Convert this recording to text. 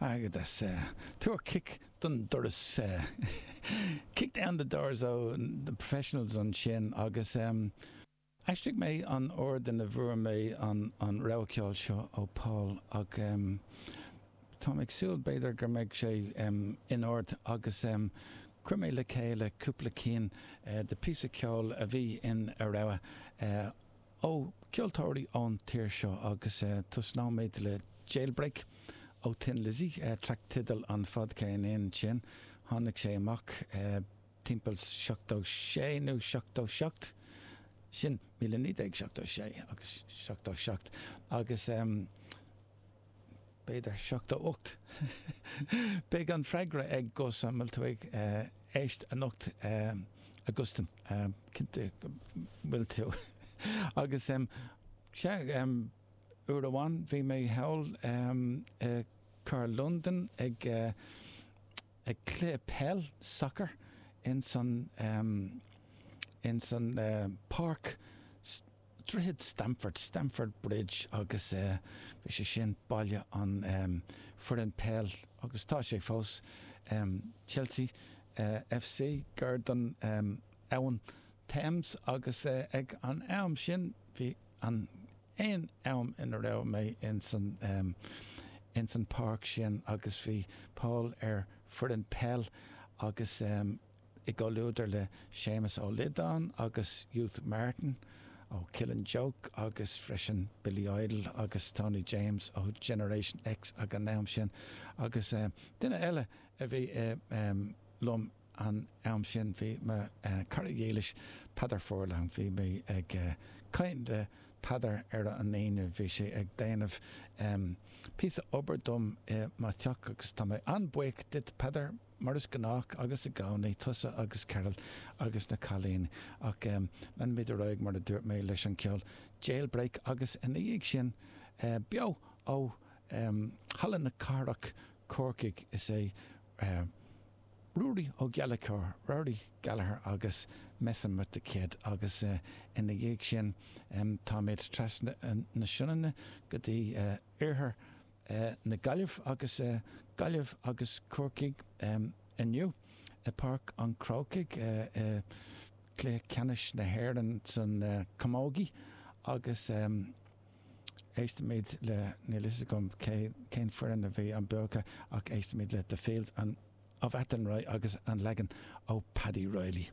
Airgeadas Tabhair cic don doras Kick down the doors Ó, na professionals ansin agus aistrigh mé an t-ord ina bhfuair mé an rogha ceoil seo ó Paul ach táim ag súil b'fhéidir go mbeidh sé in ord agus chuir mé le chéile cúpla cinn de phíosa ceoil a bhí ina rogha. ó cheoltóirí ón tír seo agus tosnóimid le Jailbreak ó Thin Lizzy, traic tideal an fhadcheirnín sin. Tháinig sé amach timpeall seachtó sé nó seachtó seacht, sin, míle naoi déag seachtó sé agus seachtó seacht agus, b'fhéidir seachtó ocht. Beidh an freagra ag Gus má tá tú ag éist anocht, Augustine, cinnte go bhfuil tú. Agus, sea, uair amháin bhí mé thall i gcathair Londan ag cluiche peile, soccer, ins an páirc, Droichead Stamford, Stamford Bridge, agus bhí sé sin baile an foireann peil agus tá sé fós, Chelsea FC, gar don abhainn Thames agus ag an am sin bhí an aon am ina raibh mé ins an ins an páirc sin agus bhí Paul ar foireann peil agus eh, i gcomhluadar le Séamus Ó Liodáin agus Youth Martin ó Killing Joke agus freisin Billy Idol agus Tony James ó Generation X ag an am sin agus duine eile a bhí liom an am sin, bhí mo chara dílis Peadar Furlong, bhí mé ag caint le Peadar ar an Aoine, bhí sé ag déanamh píosa obair dom i mo theach agus tá mé an-bhuíoch díot Peadar. mar is gnách agus i gcónaí, tusa agus Carol agus na cailíní, ach em, leanfaimid ar aghaidh mar a dúirt mé leis an gceol, Jailbreak agus ina dhiaidh sin eh, beo ó em Halla na Cathrach, Corcaigh, is é eh, Ruairí Ó Gallachóir, Rory Gallagher agus Messin' With The Kid agus eh, ina dhiaidh sin em táimid trasna na Sionainne go dtí eh, iarthar eh na Gaillimhe agus eh Gaillimh agus Corcaigh em inniu i Páirc an Chrócaigh eh i gCluiche Ceannais na hÉireann san eh camógaí agus em éistimid le níl 'fhios agam cé cén foireann a bhí an bua acu ach éistimid le The Fields of Athenry agus an leagan ó Paddy Reilly.